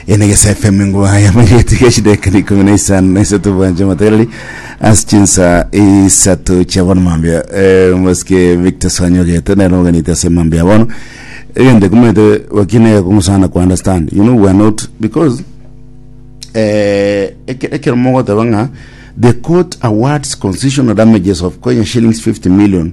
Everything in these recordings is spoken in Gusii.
enegesa fm ngwa yamanyeti gashidekani ikumi na isano na isato bwanje matarali ase chinsa isato chia bono mambia eh, mosike victor swanyogete nero oganite ase mambia ya bono egende kumete wakine kungusana ku understand you know we are not because eh, eke- ekero mogoteba ng'a the court awards constitutional damages of kenya shillings 50 million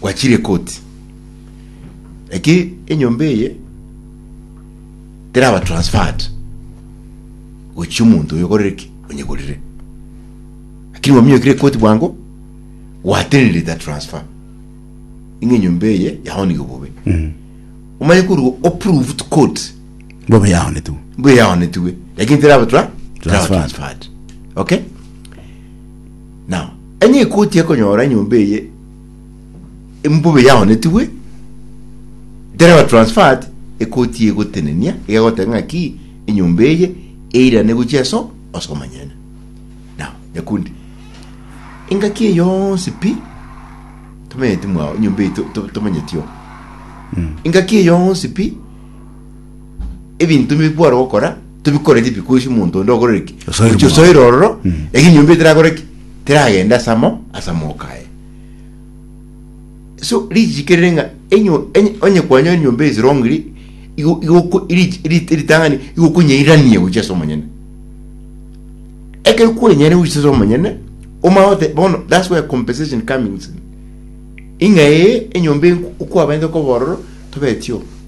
Gwachire ekoti. Eki enyomba eye teraba transferred gochia omonto oyo okorire ki onyegorire. Lakini gwaminyokire ekoti bwango gwatenenire that transfer. Ing'e enyomba eye yaonigwe bobe. Omanye korwa o prove to court bobe yaonetwe mbuya yaonetwe lakini teraba tra teraba Transferred. transferred. Okay? Now, enye ekoti ekonyora enyomba eye embuba yaonetigwe dereba transferred ekoti egotenenia egagoteba ng'aki enyomba eye eirane gochia eso ase omonyene now nyakundi engaki eye yonsi pi tomenyeti mwao enyomba eye to- to- tomenyeti oo engaki eye yonsi pi ebinto bi kware gokora tobikoreti because omonto onde okorire ki Osoire Ochi- omororo. osoire ororo Mm. eki nyomba etirakore ki teragende ase amo ase amoka aye so richiko rire ng'a enyo- enye- onye kwanyorire nyomba esirongiri igo- igoko rich- rit- ritang'ani igokonyairania gochia ase omonyene ekero kwenyare gochia ase omonyene omanye gote bono that's where compensation comings in ing'aee enyomba enku- okwabete koba ororo tobetie oo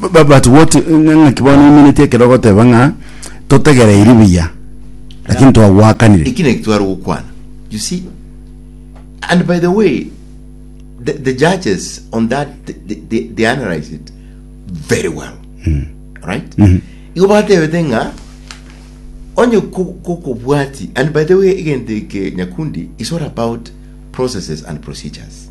Bu- bu- but what ng'a- ng'aki bono oimineti ekero ogoteba ng'a totegereiri buya lakini twagoakanire ekina ekitware gokwana you see and by the way the, the judges on that they, they- they, they analyze it very well right igo batebete ng'a onye ko- kokobwati and by the way egento eke nyakundi is all about processes and procedures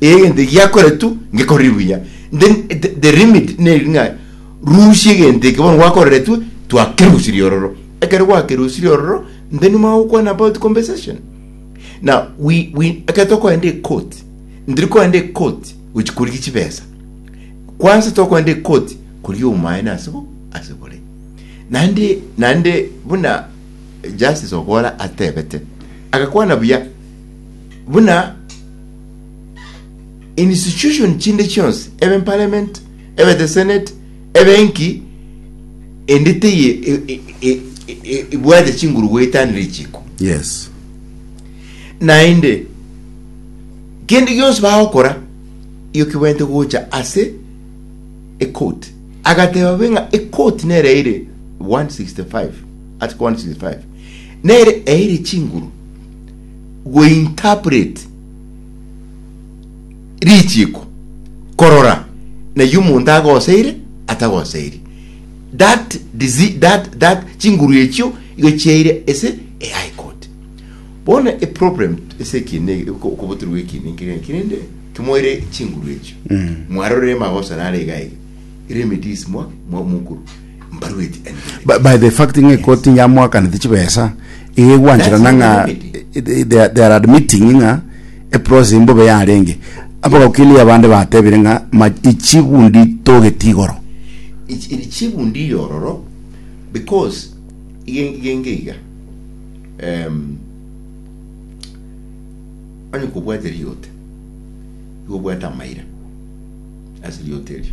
egento eki giakore tu ngekorire buya then the, the limit neri ng'a rusia egento eke bono gwakorire tu twakerusirie ororo ekero gwakerusirie ororo then mwagokwana about compensation na we, we, ekero tokoenda ekoti ndiri koenda ekoti gochi korigia chibesa kwanza tokoenda ekoti korigia obumaene ase bo ase bore naende naende buna justice okora atebete agakwana buya buna institution chinde chionsi ebe parliament ebe the senate ebe enki ende teye e- e- e- e- e- ibwate chinguru goetanire chiko Yes. naende kende gionsi bagokora iyo kibwente gocha ase ecourt agateba be ng'a ecourt nere eire 165 article 165 nere eire chinguru go interpret richiiko korora nayio omonto agoseire atagoseiri that disi that that chinguru echio igo chiaire ase e high court bono e problem ase ekine okoboterwa gwa ekine nkere ng'a kere nde kimoire chinguru echio mwarorire magoso nare iga iga remedies mwa mwa mokuru By, by the fact ng'a ekoti yamoakanete chibesa iga egwancherana That's ng'a not the remedy. eh, they, they are- they are admitting ng'a eprocess mbobe yarenge abagokili abande batebire ng'a ma ichigundi togeti igoro iri chigundi yororo because igen- genge iga em, onye kobwate riote igo obwate amaira ase riote erio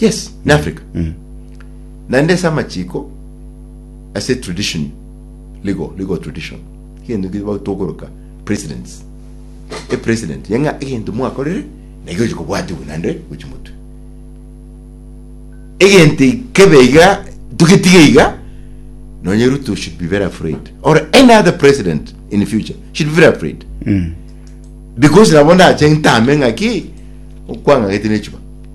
Yes, in Africa. Mm. Naende ase amachiko ase tradition legal legal tradition egento kiri bagotogoroka precedents a president yenga egento mwakorire na igo chikobwatiwe naende gochi motwe egento ikebe iga tugetiga iga nonye Ruto should be very afraid or any other president in the future should be very afraid Mm. because nabo ndache ntame ng'aki okwang'agete nechuba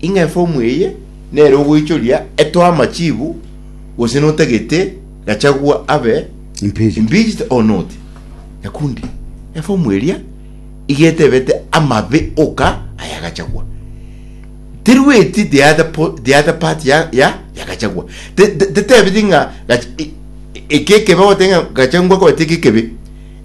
Ing'a efomu eye nere ogoichoria etoe amachibu gose notagete Gachagua abe Impeached. impeached or not. Nyakundi, efomu eria iga etebete amabe oka aya Gachagua. Terweti the other, po, the other part ya, ya, ya Gachagua. Te- te- Tetebeti ng'a Gach- e- e- eke ekebe gotenga Gachagua kwete eke ekebe.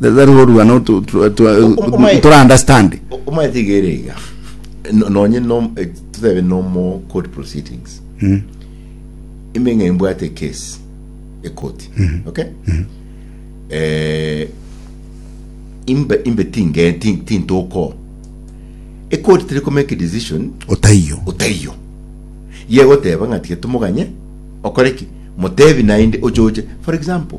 Tari korua no tu- tu- tu- Omo- omo- tora understand. omaete iga ere iga No- nonye no- eh, totebe nomo court proceedings Mm. ime ng'a imbwate case ekoti okay Eh, imbe imbe tinge tin- tintoko ekoti tiri komake decision Otaiyo. otaiyo yegoteba ng'a tiga tumoganye okoreki motebi naende ochoche for example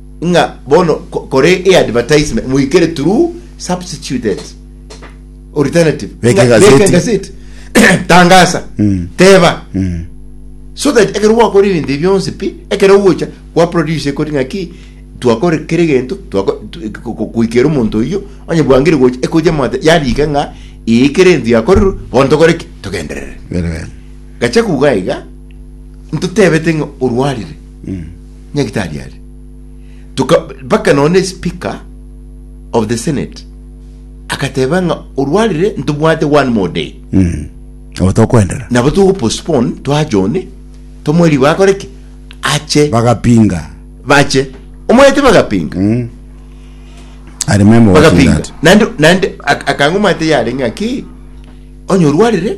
ng'a bono ko- kore e advertisement moikere through substituted alternative Beka Ng'a- egazeti. beka egazeti tangasa Mm. teba Mm. so that ekero gwakora ebinto ebi bionsi pi ekero ogocha kwa produce ekori ng'aki twakore kere gento twako- tu- ko- ko- koikera omonto oyio onye bwangire gocha ekoche amate yarika ng'a eye kere ento yakorerwe bono tokore ki togenderere Bere bere. gacha kuga iga ntotebete ng'a orwarire Nyagetari are. Toka, mpaka nonya ne speaker of the senate agateba ng'a orwarire ntobwate one more day Mm. Abo tokoendera. nabo togo postpone twajone tomoe rigo akore ki ache Bagapinga. bache omwete bagapinga Mm. I remember watching bagapinga that. nandi nandi ak- akang'umate yarenge ng'a ki onye orwarire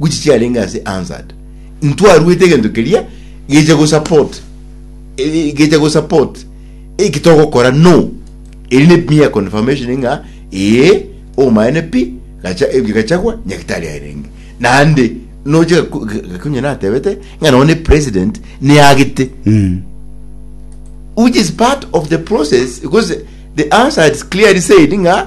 Gochi chiarenge ase answered intwaruete egento keria gecha go support eh, gecha go support eki togokora no eri ne mere confirmation ng'a ee omaene pi gacha ebio gachagwa nyagitari arenge nande noche gaku- gakunye natebete ng'a none president neagete Mm. which is part of the process because the answer is clearly said ng'a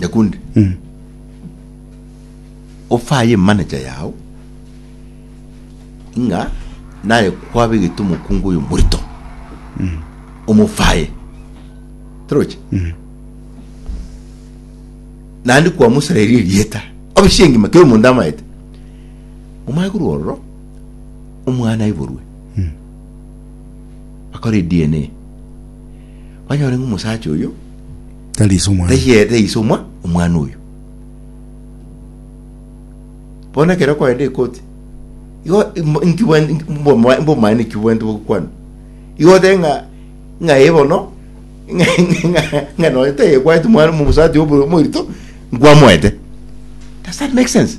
Nyakundi, ofaye emanager yao ng'a naye kwabegete omokungu oyo omonto, omofaye. Torochi? Naende kwamosareria erieta, obe chiche engima, kera omonto amaete. Omanye korwa ororo, omwana aiborwe, bakore DNA, banyore ng'a omosacha oyo, Tari ise omwana. Taiyo ere ise omwa omwana oyo. Bono ekero okoenda ekoti, igo im- inki bwen- inki- mboma- mbomaene ki bwente bogokwana? Igo otebe ng'a ng'a ee bono ng'a- ng'a- ng'a nonya tayekwaneti omwana omosati obo omoito, nkwamoete. Does that make sense?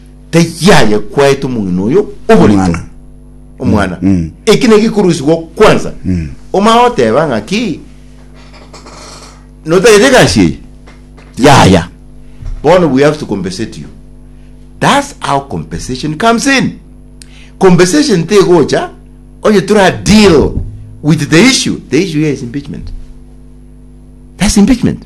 Taiyo aye kwaete omong'ina oyo oboritwa, omwana. Eki naki korusigwa kwansa. Omanye goteba ng'aki, notagete egasi eye? Yaya. Bono we have to compensate you. That's how compensation comes in. Compensation tegocha onye tora deal with the issue. The issue here is impeachment. That's impeachment.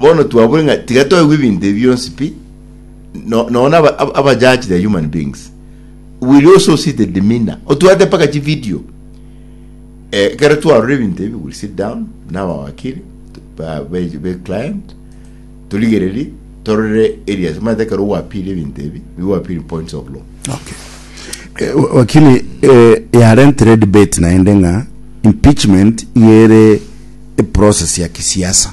Bono twabure ng'a tiga toigwe ebinto ebi bionsi pi, no- nonya aba- aba- abajudge the human beings will you also see the demeanor otwate mpaka chivideo eh, ekero twarora ebinto ebi will sit down nabawakiri t- ba- be- be client torigererie torore areas omanyete ekero gwapiri ebinto ebi nigo gwapiri points of law Okay. Eh, wa- wakili eh, yarentire debate naende ng'a impeachment iga ere eprocess ya kisiasa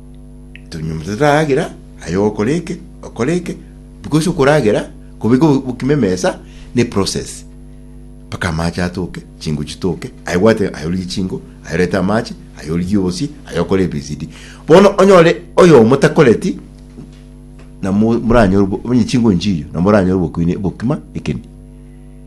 Tonyomete toragera, aye ogokora eke, okore eke, because okoragera kobeka obo- obokima emesa ne process. Mpaka amache atoke, chingo chitoke, aye bwate aye origie chingo, aye orete amache, aye origie obosie, aye okore ABCD. Bono onyore oyomo takoreti, na mo- moranyore obo- onye chingo nchiyo, na moranyore obokuini obokima ekeni.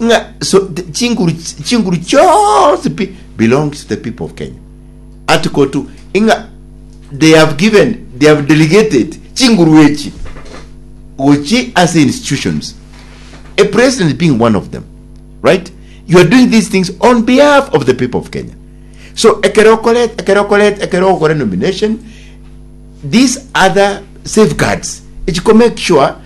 ng'a so the chinguru chinguru chionsi pi belongs to the people of Kenya article 2 ng'a they have given they have delegated chinguru echi gochi ase institutions a president being one of them right you are doing these things on behalf of the people of Kenya so ekero okoret ekero okoret ekero okore nomination these other safeguards echi ko make sure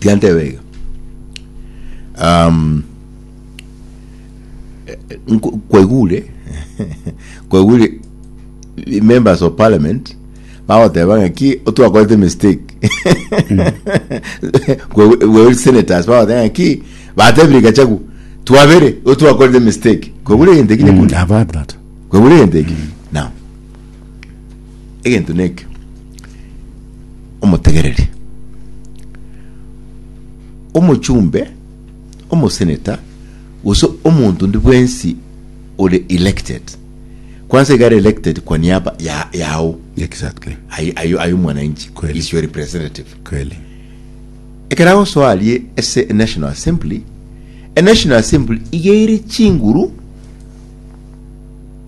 Tianteba iga. Um, eh, eh, nko- kwaigure kwaigure i- members of parliament bagoteba ng'a ki otwakorete mistake Kwaigure- kwaigure senators bagoteba ng'a ki batebire gachagu twabere otwakorete mistake kwaigure egento ekine Mm, kundi I've heard that. kwaigure egento eki now egento neke, omotegereri, omochumbe, omosenator, gose omonto onde bwensi ore elected, kwansa iga are elected kwa niaba ya- yao, Exactly. aye aye- aye omwananchi, Kweli. is your representative. Kweli. ekero agosoa arie ase enational assembly enational assembly iga ere chinguru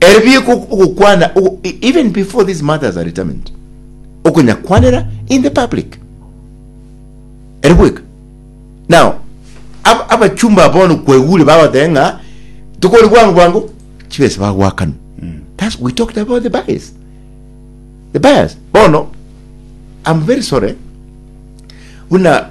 Ere bieka ogokwana even before these matters are determined, okonya kwanera in the public ere bweka. Now abachumba aba bono kwaigure bagoteba ng'a tokore bwango bwango chibesa bagwakana. Mm. That's we talked about the bias. The bias. Bono I'm very sorry. Buna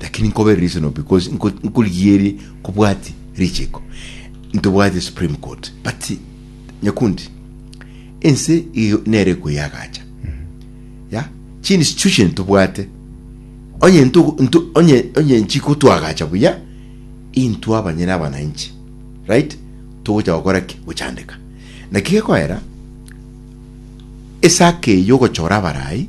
Lakini nkobe reasonable because nko nkorigierie kobwati richiko ntobwati supreme court but nyakundi ense iyo nere ekoyagacha ya chi institution tobwate onye nto nto onye onye nchiko twagacha buya intwa abanyene abananchi right togocha gokora ki gochandeka naki gekoera esake yogochora abarai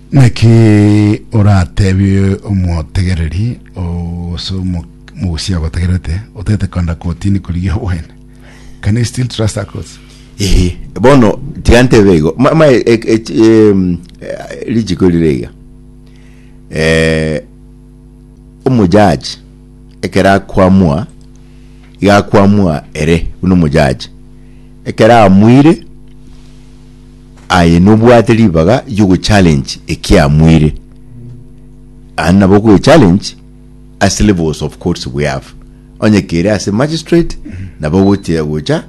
Naki oratebie omotegereri gose omo- omogusia ogotegerete, otaete kogenda kotini korigia obwene? Can you still trust a court? Ehe, bono tiga ntebe igo ma- ma- e- e- e- chi- em, eh, richiko rire iga Eh, omojaji ekero akwamwa iga akwamwa ere buna omojaji ekero amuire Aye nobwate ribaga riogo challenge ekiamuire aande nabo okoe challenge ase levels of courts we have onye kere ase magistrate nabo ogochia gocha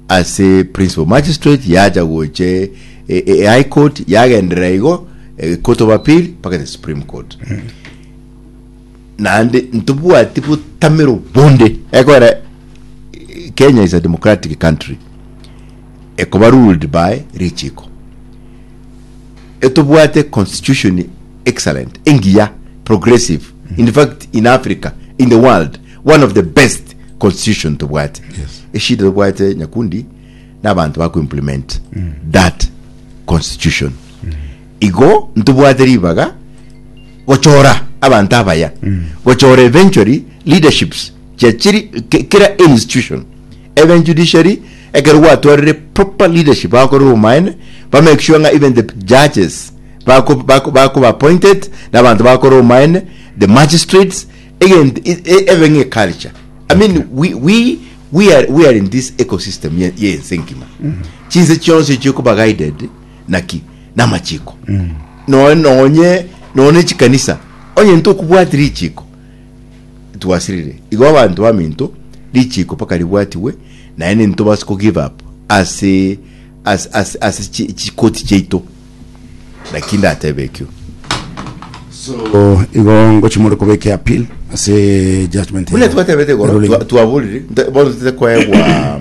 ase principal magistrate yacha goche e, e, high court yagenderera igo e, court of appeal mpaka the supreme court naende ntobwati botamero bonde ekogera Kenya is a democratic country ekoba ruled by richiko etobwate constitution excellent engiya progressive in fact in Africa in the world one of the best constitution tobwate Yes. eshida tobwate nyakundi n'abantu baku implement that constitution Igo ntobwate ribaga gochora abanto abaya gochora eventually leaderships chia chiri ki- kera institution even judiciary ekero gwatwarire proper leadership bakore obomaene ba make sure ng'a even the judges bako bako bakoba appointed na abanto bakore obomaene the magistrates egent e- e- ebe ng'a eculture I mean we we we are we are in this ecosystem ye ye ense engima chinse chionsi chikoba guided naki namachiko no nonye none chikanisa onye ntokubwati richiko twasirire igo abanto baminto richiko paka ribwatiwe naye ninto basi ko give up ase ase ase ase chi- chikoti chiaito naki ndatebe ekio so igo ngochi more kobeke appeal ase judgment buna twatebete igoro twa- twaborire nta- bono tete koegwa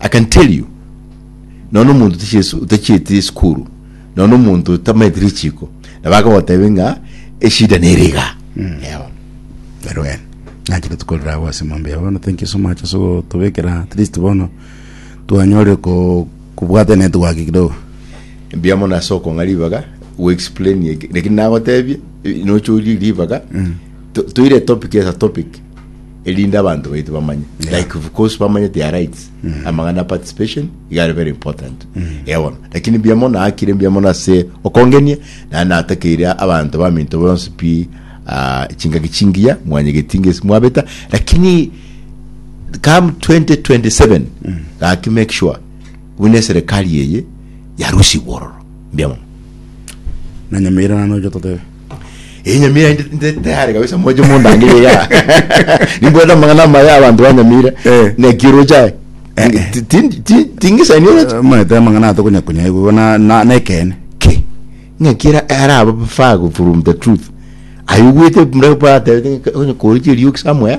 I can tell you nonya omonto otachieti otachieti esukuru nonya omonto otamaeti richiko nabo akogotebi ng'a eshida nere iga Eh, bono. Very well. Nache tukorera agwo ase emambe ya bono. Thank you so much ase gotobekera at least bono twanyorire ko kobwata network kidogo. mbuya mono ase okong'a ribaga goexplain eke lakini nagotebie nocha orie ribaga to- toire topic as a topic erinde abanto baito bamanye Yeah. like of course bamanye their rights amang'ana ya participation iga are very important iga bono lakini mbuya mono akire mbuya mono ase okongenia naye natakeire abanto baminto bonsi pi ah, chingaki chingiya mwanyegeti ngesi mwabeta lakini come 2027 gaki make sure buna eserikali eye yarusia igororo mbuya mono na nyamira nano ojo totebe Eh, nyamira ndi- ndi tayari kabisa moche mondangire ya nimbwete amang'ana amaya abantu banyamire Eh. nekiro chae Eh, eh. Ti- ti- ti- tingisani oroche omanyete amang'ana atokonyakunya igo na- na- nekene ki ng'akira ara abafaa from the truth ayugwete mura batebete onye koriche rioki somewhere